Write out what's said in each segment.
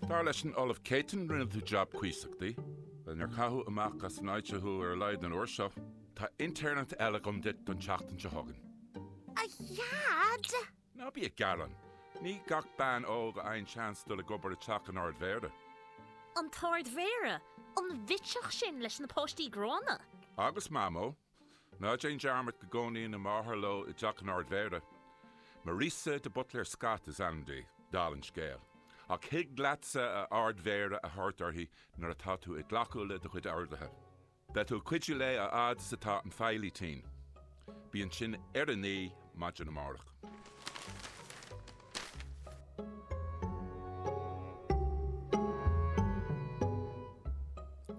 Dar leis an Ollamh Céitinn, rinne tú jab cuíosach di, le nár caitheadh amach as an áit thú ar a laghad an uair seo. Tá intéirneacht eile agam duit don tseachtain seo chugainn. A Dhaid! Ná bí ag gearán. Ní gach bean óg a fhaigheann seans dul ag obair i teach an Ardmhéara. An tArdmhéara? An bhitseach sin leis na páistí gránna? Agus Mamó, Ná déan dearmad go gcónaíonn a máthair leo i dteach an Ardmhéara. Marissa de Buitléir Scott is ainm di, dála an scéil. Ach thig leatsa 'a Ardmhéara' a thabhairt uirthi nuair atá tú ag glacadh le do chuid orduithe. Beidh tú ag cuidiú léi a fhad is atá an feighlí tinn. Bí ansin ar a naoi maidin amárach.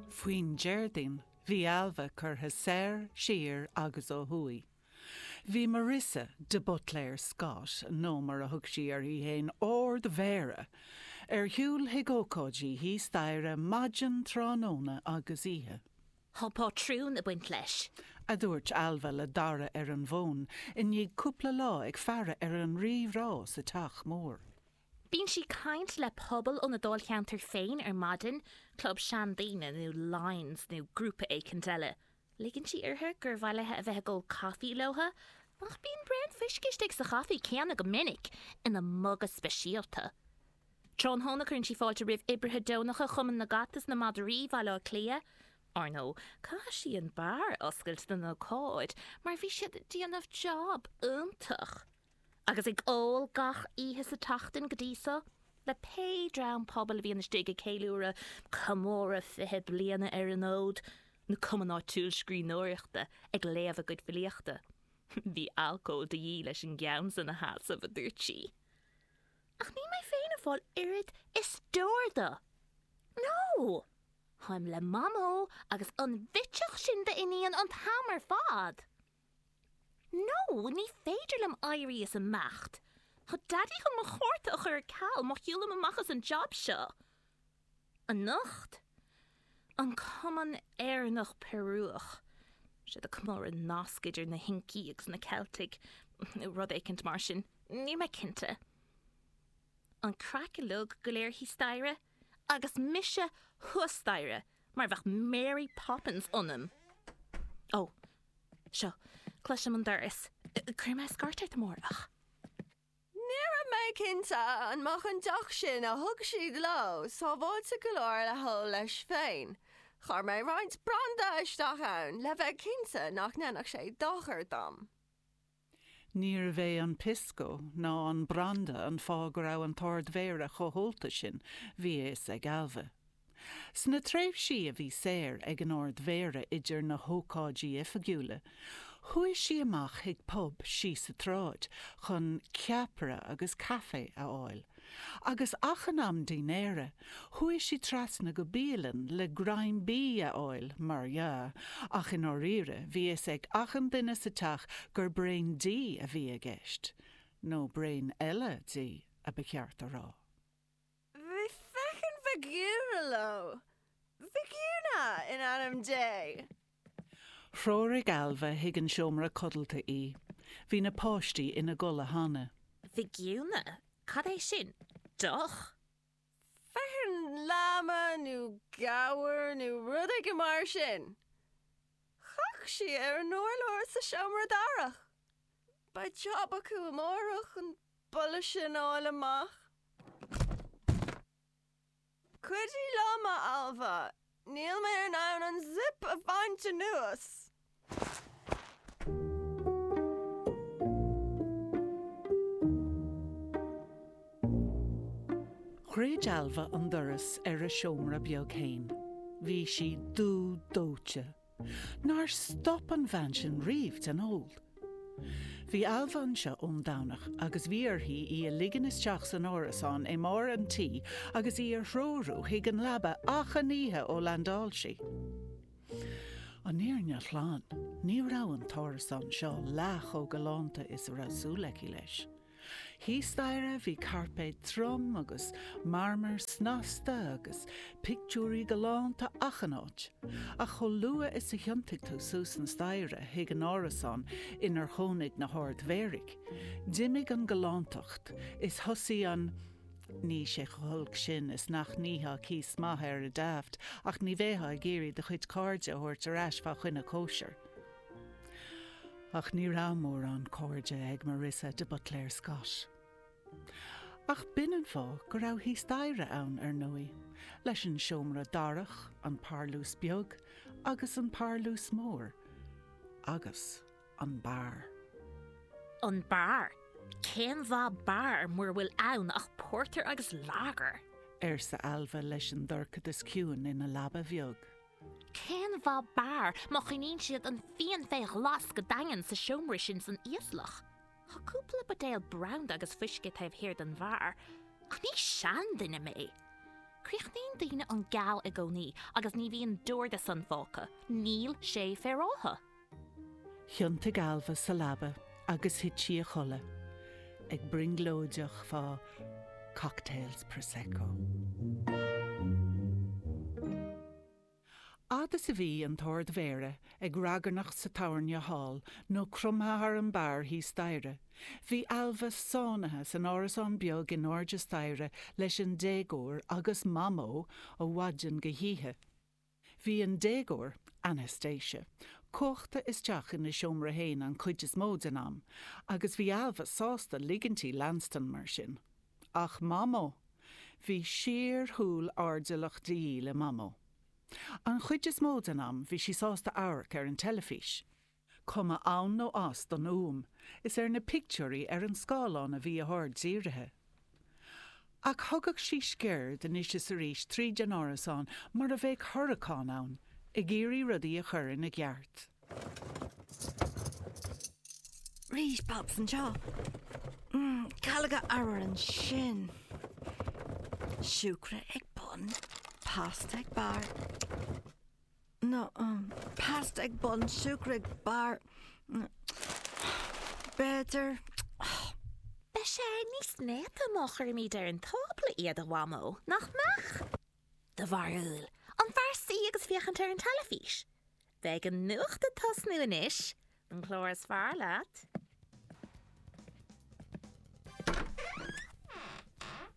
Faoin Déardaoin Bhí Ailbhe curtha soir, siar agus ó thuaidh. Bhí Marissa de Buitléir Scott, nó mar a thug sí uirthi fhéin, Ardmhéara, ar shiúl chuig ócáidí thíos staighre, maidin, tráthnóna agus oíche. Thá pátrún ag baint leis. a dúirt Ailbhe le Dara ar an bhfón i ndiaidh cúpla lá ag faire ar an rí-rá sa teach mór. Bíonn sí ag caint le pobal óna dáilcheantar féin ar maidin, club seandaoine nó Lyons nó grúpa éicint eile. Ligeann sí uirthi gur mhaith léi a bheith ag ól caife leo, ach bíonn braon fuisce istigh sa chaife céanna go minic, ina muga speisialta. Tráthnóna cuireann sí fáilte roimh oibrithe deonacha Chumann na gCat is na Madraí Bhaile Átha Cliath. Ar ndóigh, caithfidh sí an beár a oscailt don ócáid mar bhí siad ag déanamh jab iontach. agus ag ól gach oíche sa tseachtain go dtí seo, le pé dream pobail a bhíonn istigh ag ceiliúradh comóradh fiche bliana ar an fhód, nó cumann áitiúil scríbhneoireachta ag léamh a gcuid filíochta. Bhí alcól de dhíth leis an gceann san a sheasamh, a dúirt sí. Ach níl mé féin ag fáil oiread is deoir de! Nó táim le Mamó agus an bhitseach sin d'iníon an t-am ar fad! Nó ní féidir liom éirí is imeacht. Tá Daidí chun mo chárta a chur ar ceal má shiúlaim amach as an jab seo anocht. An Cumann Éireannach Peiriúch. Siad ag comóradh nasc idir na hIncigh agus na Ceiltigh, nó rud éicint mar sin. Níl mé cinnte. An craic uilig go léir thíos staighre, agus mise thuas staighre mar bheadh Mary Poppins ionam. Ó! Seo, cloisim an doras. Cuirfidh mé scairt ort amárach. Ní raibh mé cinnte an mbeadh an deoch sin a thug siad leo sábháilte go leor le hól leis féin. Chuir mé roinnt branda isteach ann le bheith cinnte nach ndéanfadh sé dochar dom. Níorbh é an pisco ná an branda an fáth go raibh an tArd-Mhéara chomh hólta sin, bhí a fhios ag Ailbhe. Sna tréimhsí a bhí saor ag an Ard-Mhéara idir na hócáidí oifigiúla, chuaigh sí amach chuig pub síos an tsráid chun ceapaire agus caife a fháil, Agus achan am dinnéara, chuaigh sí trasna go bialann le greim bídh a fháil, mar dhea, ach i ndáiríre, bhí fhios ag achan duine sa teach gur braon dí a bhí i gceist. Nó braon eile dí, a ba cheart a rá. Bhí feckin' vicuña leo. Vicuña in ainm Dé! Threoraigh Ailbhe chuig an seomra codlata í. Bhí na páistí ina gcodladh cheana. Vicuña? Cad é sin? Deoch? Feckin' láma nó gabhar nó rud éigin mar sin. Chac sí ar an urlár sa seomra darach. Beidh jab acu amárach an boladh sin a fháil amach. Cuidigh liom, a Ailbhe, níl mé in ann an zip a bhaint anuas! Dhruid Ailbhe an doras ar a seomra beag fhéin. Bhí sí dubh dóite. Nár stop an bhean sin riamh den ól. Bhí Ailbhe anseo ón Domhnach agus bhí uirthi í a ligean isteach san árasán i mbarr an tí agus í a threorú chuig an leaba achan oíche ó landáil sí. An fhírinne ghlan, ní raibh an t-árasán seo leath chomh galánta is a raibh súil aici leis. Thíos staighre bhí cairpéad trom agus marmar snasta agus pictiúirí galánta achan áit, ach chomh luath is a thiontaigh tú suas an staighre chuig an árasán inar chónaigh na hArd-Mhéaraigh, d'imigh an ghalántacht is thosaigh an Níl sé chomh holc sin is nach n-íocfá cíos maith air ar Daft, ach ní bheifeá ag iarraidh do chuid cairde a thabhairt ar ais fá choinne cóisir. Ach ní raibh mórán cairde ag Marissa de Buitléir Scott. Ach b'in an fáth go raibh thíos staighre ann, ar ndóigh, leis an seomra darach, an parlús beag agus an parlús mór. Agus an beár. An beár? Cén mhaith beár mura bhfuil ann ach pórtar agus lager? arsa Ailbhe leis an dorchadas ciúin ina leaba bheag. Cén mhaith beár má choinníonn siad an fíon fé ghlas go daingean sa seomra sin san íoslach? Tá cúpla buidéal branda agus fuisce taobh thiar den bheár, ach ní seanduine mé. Críochnaíonn daoine an geal i gcónaí agus ní bhíonn deoir de san fágtha, níl sé féaráilte. Thiontaigh Ailbhe sa leaba agus thit sí a chodladh, ag brionglóideach fá cocktails Prosecco. Fhad is a bhí an tArd-Mhéara ag ragairneacht sa tábhairne thall nó cromtha thar an beár thíos staighre, bhí Ailbhe sáinnithe san árasán beag in airde staighre leis an déagóir agus Mamó ó mhaidin go hoíche. Bhí an déagóir, Anastasia, cuachta isteach ina seomra féin an chuid is mó den am, agus bhí Ailbhe sásta ligint di leanstan mar sin. Ach Mamó! Bhí síorshúil airdeallach de dhíth le Mamó. An chuid is mó den am, bhí sí sásta amharc ar an teilifís. Cuma ann nó as don fhuaim, is ar na pictiúirí ar an scáileán a bhí a haird dírithe. Ach thugadh sí sciuird anois is arís tríd an árasán mar a bheadh hurracán ann, ag iarraidh rudaí a chur ina gceart. Rís Pops anseo. Calóga arbhair ansin. Siúcra ag bun, pasta ag barr. nó pasta ag bun siúcra ag barr, b'fhéidir. Beidh sé níos néata má chuirimid ar an tábla iad, a Mhamó, nach mbeadh? Do bharúil, an fearr suí agus féachaint ar an teilifís? Beidh an nuacht ag tosnú anois, An clár is fearr leat?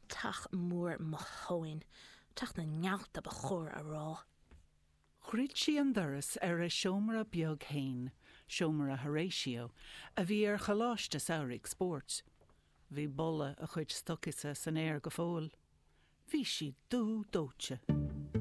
Teach mór mo thóin. Teach na nGealt ba chóir a rá. Dhruid sí an doras ar a seomra beag fhéin, seomra Horatio, a bhí ar choláiste samhraidh spóirt. Bhí boladh a chuid stocaí san aer go fóill. Bhí sí dubh dóite.